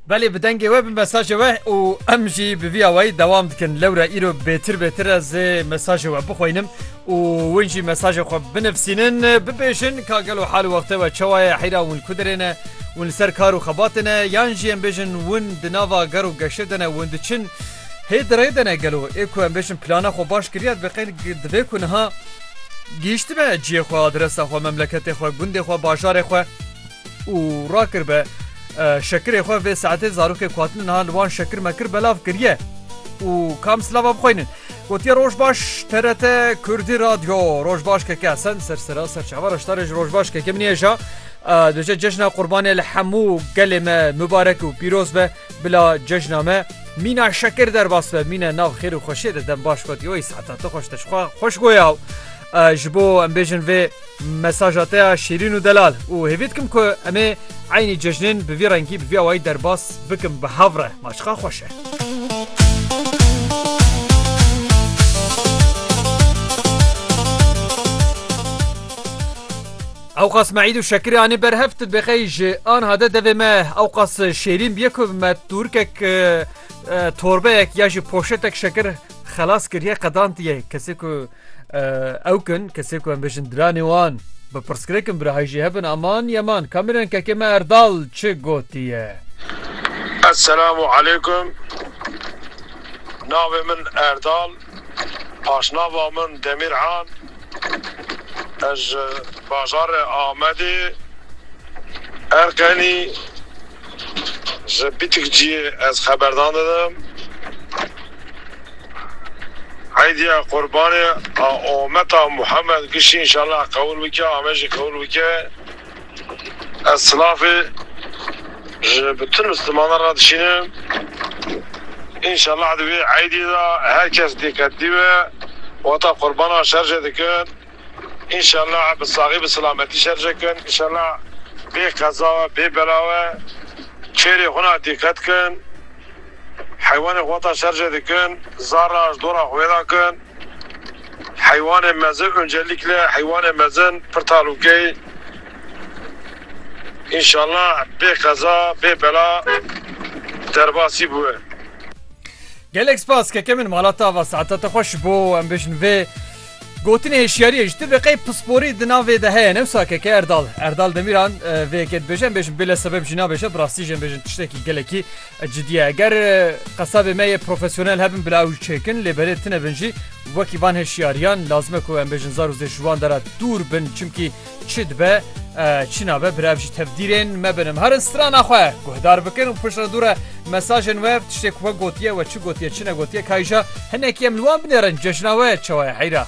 Belê bi dengê we bi mesajê we û em jî bi vî awayî dewam dikin lewra îro bêtir bêtir ez ê mesajê we bixwînim û win jî mesajê xwe binivîsînin bibêjin ka gelo hal û wextê we çawa ye heyra win ku dirê ne win li ser kar û xebatê ne yan jî em bêjin win di nava gar û geşê de ne win diçin hê di rê de ne gelo ê ku em bêjin plana xwe baş kiriye divê qey divê ku niha gihîştime ciyê xwe adresa xwe memleketê xwe gundê xwe bajarê xwe û rakir be şekirê xwe vê saetê zarokê ku hatine niha li wan şekir mekir belav kiriye û kam silava bixweynin. Gotiye roj baş TRT Kurdî Radyo roj baş KK Esen ser sera ser çava reştarê ji roj baş KK min ye ja duje cejna qurbanê li hemû gelê me mibarek û pîroz be bila cejna me mîna şekir derbas be mîne nav xêr û xweşiyê de dem baş gotiye wey saeta tu xweş te ji xwe xweş goya ji bo em bêjin vê Mesaja te ya şîrîn û delal û hêvî dikim ku em ê eynî cejnên bi vî rengî bi vî awayî derbas bikim bi hev re. Ma çiqar xweş e. Ewqas me îd û şekirê anî ber hev tu bêxeyî ji anha de devê me ewqas şêrîn bîye ku me tûrikek torbeyek ya jî poşetek şekir xelas kiriye qedantiye kesê ku Ew kin kesê ku em bêjin diranê wan bi pirsgirêkin birahî jî hebin aman yeman kamîrên kekê me Erdal çi gotiye. Esselam û aleykum navê min Erdal paşnava min Demîr an ez ji bajarê Amedê Erqenî. Ji Bîtikciyê ez xeberdan didim. Eydiya Qurbanê a Ometa Muhammed Gişî înşallah qewil bike, ame jî qewil bike. Ez silafê ji bütün Mislimanan re dişînim. Înşallah di vê eydê de her kes lêketdî be, wata Qurbana şer jê dikin. Înşallah bi saxî bi silametî şerje kin. Înşallah bê qeza we bê bela we kêrê xwe na dîqet kin. Heywanê xwe ta şerje dikin zar ra ji dora xwe vêda kin. Heywanê mezin uncelîkle heywanê mezin pir talûkey. Înşallah bê qeza bê bela derbasî biwe. Gelek spas keke min mala ta va saeta te xweş bo em bêjin vê. Gotinê hişyariyê ji tibe qey pisporî di navê de heye ne wisa keke Erdal Erdal Demîran vê yekê dibêje em bêjin bêle sebeb jî nabêje bi rastî jî em bêjin tiştekî gelekî cidî ye eger qesabê me yê profesyonel hebin bila ew çêkin lê berê tine bin jî wekî van hişyariyan lazim e ku em bêjin zar û zêj ji wan de re dûr bin çimkî Çi dibe çi nabe bi rev ji tevdîrên me binim herin strana xwe guhdar bikin û piştre dûre mesajên we tiştê ku we gotiye we çi gotiye çi negotiye kayja hinekî em li wan binêrin cejna we çawa ye heyra.